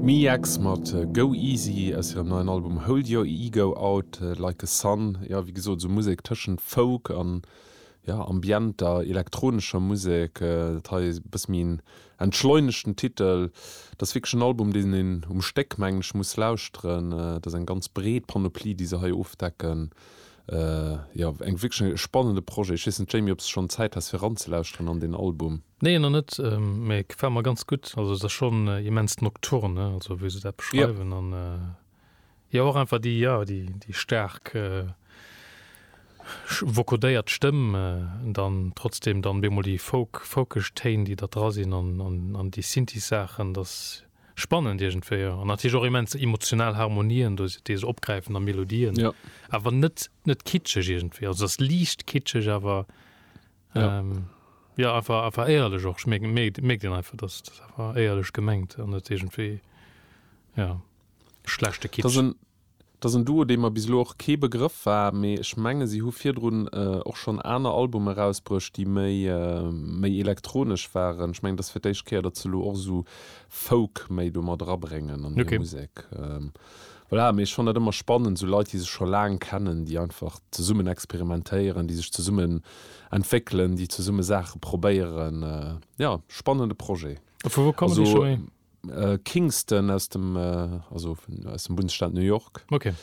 MIEX mat Go Easy aus hirem neien Album Hold Your Ego Out Like A Sun. Jo, wéi gesot, esou Musek tëschent Folk an, ja, ambienter elektronescher Musek. Dat hei e bësse méi en entschleunegten Titel. Dat ass wierklech en Album, deen een um Stéck, mengen ech, muss lauschteren. Dat ass eng ganz breet Panoplie, déi se hei ofdecken. Jo, eng wierklech e spannende Projet. Ech weess net, Jamie, ob s de schonn Zäit has fir eranzelauschteren an deen Album? Nee, nach net, mä et gefält mer ganz gutt. Also et ass schonn immens nocturne, also wéi se dat beschreiwen. An jo och einfach déi, jo, déi staark vocodéiert Stëmm, dann trotzdeem dann bemol déi Folk, folkeg Téin, déi da dra sinn an déi Synthie-Saachen, dat spannend iergendwéi, jo, an natierlech och immens emotional Harmonien do, déi se opgräifen, a Melodien, ja. awer net, net kitscheg iergendwéi, also ass liicht kitscheg, awer ja. Ähm, ja, einfach, einfach éierlech och, schmierkt, mierkt een einfach, dass dat einfach éierlech gemengt, an net iergendwéi, ja, schlechte Kitsch. Et ass en Duo, dee mer bis elo och kee Begrëff war, mee ech menge si hu virdrun och schonn aner Albume erausbruecht, déi méi méi elektronesch waren. Ech mengen, et ass fir d'éischt Kéier, datt se elo och esou Folk méi domat erabréngen an hir Musek. Voilà, mee ech fannen dat ëmmer spannend, esou Leit, déi sech scho laang kennen, déi einfach zesummen experimentéieren, déi sech zesummen entwéckelen, déi zesumme Saache probéieren. Jo, spannende Projet. A vu wou kommen déi Stécker? Kingston aus dem also aus dem Bundesstaat New York. Okay.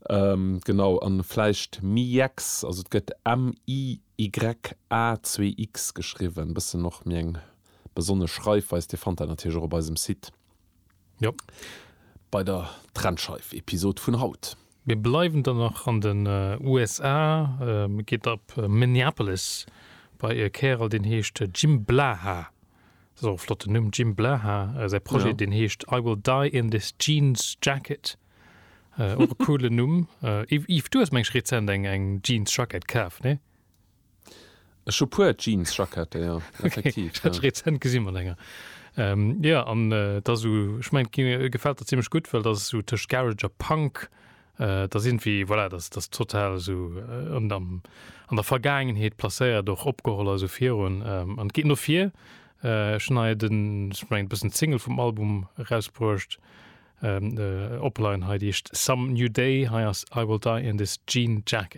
Ähm, genau, an vläicht Miyex, also et gëtt M-I-Y-A-2-X geschriwwen, bëssen och méi eng besonnesch Schreifweis. Dir fannt dat natierlech och op eisem Site. Jo. Bei der Trennscheif-Episod vun haut. Mir bleiwen dann nach an den USA, geet ab Minneapolis bei e Kärel deen heescht Jim Blaha. Dat ass och e flotten Numm, Jim Blaha. Säi Projet, ja. deen heescht I Will Die in This Jeans Jacket. Äh, och e coolen Numm. Äh, Yves, du hues mengg rezent eng, eng Jeans-Jacket kaf, ne? Ech hu puer Jeans-Jackette, ja. Effektiv. Okay. Ja. rezent gesinn mat enger. Ähm, ja, an äh, dat so, ich mein, gefällt der ziemlich gut, well dat so tëscht Garage a Punk Et ass iergendwéi, voilà, dass dass total esou an am, an der Vergaangenheet placéiert, och opgeholl ass, esou virun. An et geet no vir. Ech hunn hei den, ech mengen, e bëssen d'Single vum Album erausbruecht, Opline hei, déi heescht Some New Day. Hei ass I Will Die In This Jean Jacket.